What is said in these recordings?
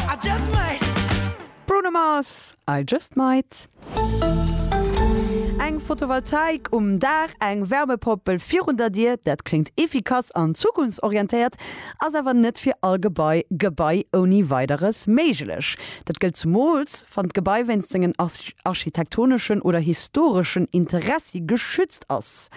I just might. Bruno Mars, I just might. Eng Photovoltaik um Daach, eng Wärmepompel virun der Dier, dat kléngt efficace an zukunftsorientéiert, ass awer net fir all Gebai Gebai ouni Weideres méiglech. Dat gëllt zumools, wann d'Gebai wéinst sengen architektoneschen oder historeschen Interessi geschützt ass.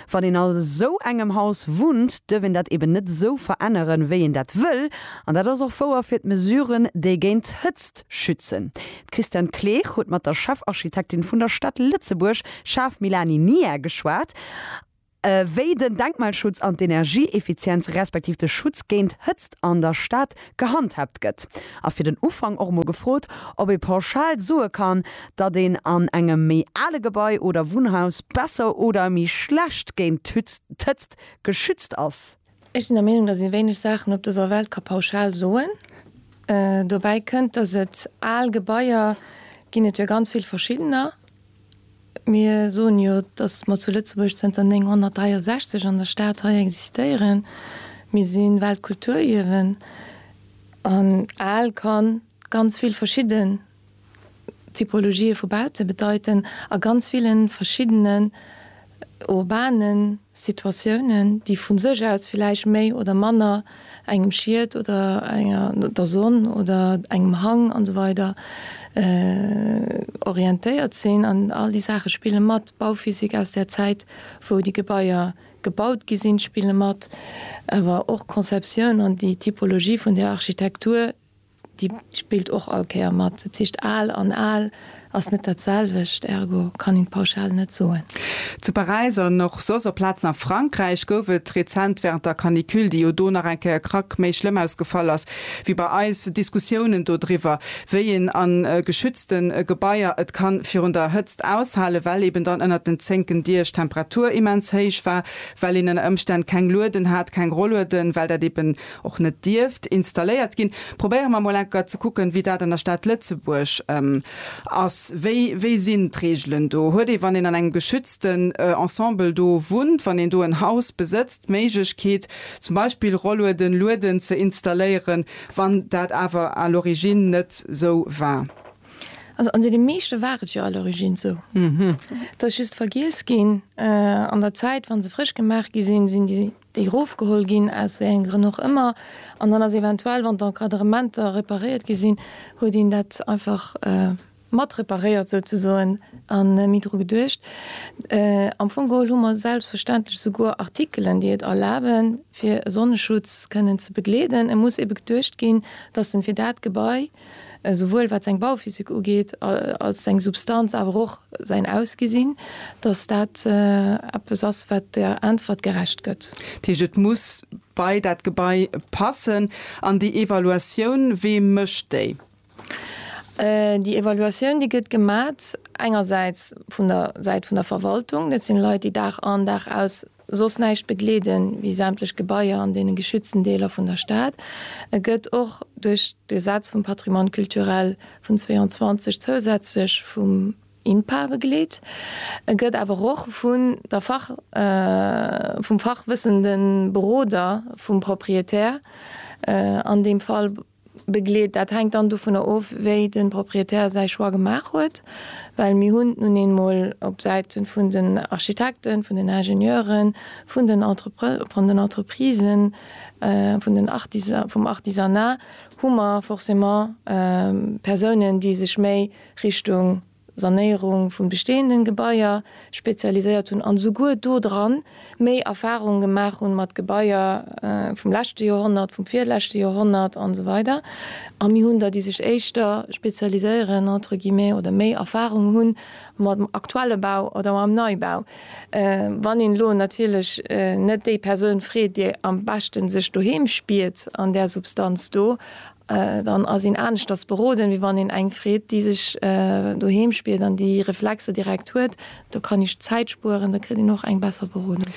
Wann een all esou engem Haus wunnt, duerf een dat eben net esou veränneren, wéi een dat wëll. An dat ass och wouer fir d'Mesuren, déi géint d'Hëtzt schützen. D'Christiane Kleesch huet mat der Chefarchitektin vun der Stad Lëtzebuerg, Schaaf Milani Nia, geschwat, wéi den Denkmalschutz an d'Energieeffizienz respektiv de Schutz géint Hëtzt an der Stad gehandhaabt gëtt, a fir den Ufank och mol gefrot, ob ee pauschal soe kann, datt een an engem méi ale Gebai oder Wunnhaus besser oder méi schlecht géint d'Hëtzt geschützt ass. Ech sinn der Meenung, datt ee wéineg Saachen op dëser Welt ka pauschal soen. Dobäi kënnt, datt et al Gebaier ginn, et jo ganz vill verschiddener, Mir soen jo, dass mer zu Lëtzebuerg zënter 963 an der Stad hei existéieren. Mir si Weltkulturierwen an al ka ganz vill verschidden Typologië vu Baute bedeiten a ganz ville verschiddene urbanen Situatiounen, déi vu sech aus villäicht méi oder manner engem Schiet oder enger, der Sonn oder engem Hang an esou weider orientéiert sinn. An all déi Saache spille mat. D'Bauphysik aus där Zäit, wou déi Gebaier gebaut gi sinn, spille mat. Awer och d'Conceptioun an déi Typologie vun där Architektur Déi spillt och all Kéier mat. Dat heescht, al an al ass net dat selwecht, ergo kann een d'Pauschal net soen. Zu Paräis an och soss op Plazen a Frankräich gouf et rezent wärend der Canicule, déi jo do nach eng Kéier krack méi schlëmm ausgefall ass wéi bei eis, Diskussiounen dodriwwer, wéi een a geschützte Gebaier et ka virun der Hëtzt aushalen, well eben dann ënnert den zénken Diech d'Temperatur immens héich war, well een ënner Ëmstänn keng Lueden hat, keng Rollueden, well dat eben. och net dierft installéiert ginn, probéiere mer emol enker ze kucken, wéi dat an der Stad Lëtzebuerg ass. Wéi, wéi sinn d'Reegelen do? Huet ee, wann een an engem geschützten Ensemble do wunnt, wann een do en Haus besëtzt, d'Méiglechkeet, zum Beispill Rollueden, Lueden ze installéieren, wann dat awer à l'origine net sou war? Also an deene meeschte war et jo à l'origine sou. Et ass just vergiess ginn an der Zäit, wa se frësch gemaach gi sinn, sinn déi déi erofgeholl ginn, aus wéi engen Grënn och ëmmer, an dann ass eventuell, wann d'Encadrementer reparéiert gi sinn, huet een dat einfach mat reparéiert souzesoen a méi dru geduecht. Am Fong geholl hu mer selbstverständlech souguer Artikelen, déi et erlaben, fir e Sonneschutz kënnen ze begleeden. E muss ebe geduecht ginn, dass en fir dat Gebai, esouwuel wat seng Bauphysik ugeet, als seng Substanz, awer och säin Ausgesinn, datt dat eppes ass, wat der Äntwert gerecht gëtt. Dat heescht, et muss bei dat Gebai passen. An déi Evaluatioun, wee mécht déi? Déi Evaluatioun, déi gëtt gemat engersäits vun der Säit vun der Verwaltung. Dat sinn Leit, déi Dag an, Dag aus soss näischt begleeden wéi sämtlech Gebaier an deene geschützten Deeler vun der Stad. E gëtt och duerch d'Gesetz vum Patrimoine culturel vun 22 zousätzlech vum INPA begleet. E gëtt awer och vun der Fach vum fachwëssende Beroder vum Propriétaire, an deem Fall begleet. Dat hänkt dann dovunner of, wéi de Proprietär säi Choix gemaach huet, well mir hunn nun eemol op Säite vun den Architekten, vun den Ingenieuren, vun den Entreprisen, vum Artisanat hu mer forcément Persounen, déi sech méi Richtung Sanéierung vun bestehenden Gebaier spezialiséiert hunn an souguer do dran méi Erfahrungen gemaach hunn mat Gebaier vum leschte Joerhonnert, vum virleschte Joerhonnert an esou weider a mir hunn der déi sech éischter spezialiséieren entre guillemets oder méi Erfahrung hunn mam aktuelle Bau oder mam Neibau. Wann een elo natierlech net déi Persoun freet déi am beschte sech doheem spiert an där Substanz do, Dann ass een aneschters beroden, wéi wann een eng freet, déi sech doheem spiert an déi Reflexer direkt huet. Do kann ee Zäit spueren, da kritt een och eng besser Berodung.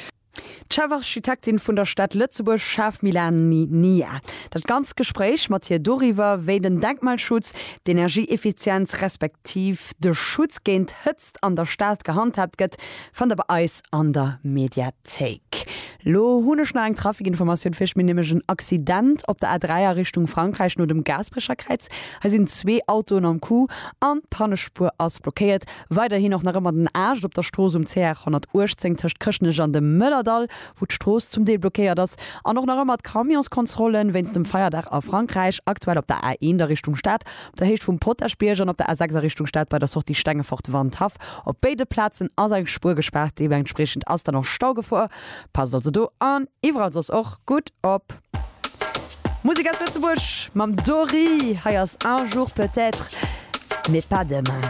D'Chefarchitektin vun der Stad Lëtzebuerg Schaf Milani Nia. Dat ganzt Gespréich mat hir doriwwer, wéi den Denkmalschutz, d'Energieeffizienz respektiv de Schutz géint Hëtzt, Aarbechtsplatz an der Stad gehandhaabt gëtt, fannt der bei eis an der Mediathéik. Lo hunn ech nach eng Trafikinformatioun fir iech, mir nämlech en Accident op der A3 a Richtung Frankräich no dem Gaasperecherkräiz. Hei sinn zwee Autoen am Coup an d'Pannespuer ass blockéiert. Weiderhin och nach ëmmer den Aarbecht op der Strooss um CR 118 tëscht Chrëschtnech an dem Mëllerdall, wou d'Strooss zum Deel blockéiert ass. An och nach ëmmer d'Camionskontrollen wéinst dem Feierdag a Frankräich, aktuell op der A1 a Richtung Stad, Dat heescht vum Potaschbierg an op der A6 a Richtung Stad bei der Sortie Stengefort-Wandhaff. Op béide Plazen ass eng Spuer gespaart, deementspriechend ass dann och Staugefor. Passt also do an iwwerall soss och gutt op. Musek aus Lëtzebuerg mam Dory, hei ass Un jour peut-être, mais pas demain.